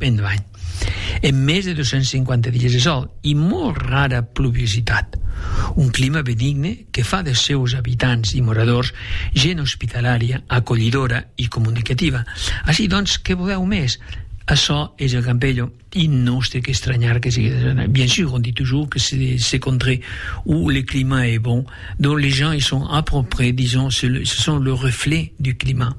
Endavant. En mès de 250 dies de sòl i molt rara pluviositat, un clima benigne que fa des seus abitants i moradors gent ospitalària, acolhidora i comunicativa. Ací, doncs, que volèu mès? Açò es el Campello i nos té qu'estranhar que sigue desordenat. Bien sûr, on dit toujours que c'est contré où le climat est bon, donc les gens y sont à peu près, disons, ce sont le reflet du climat.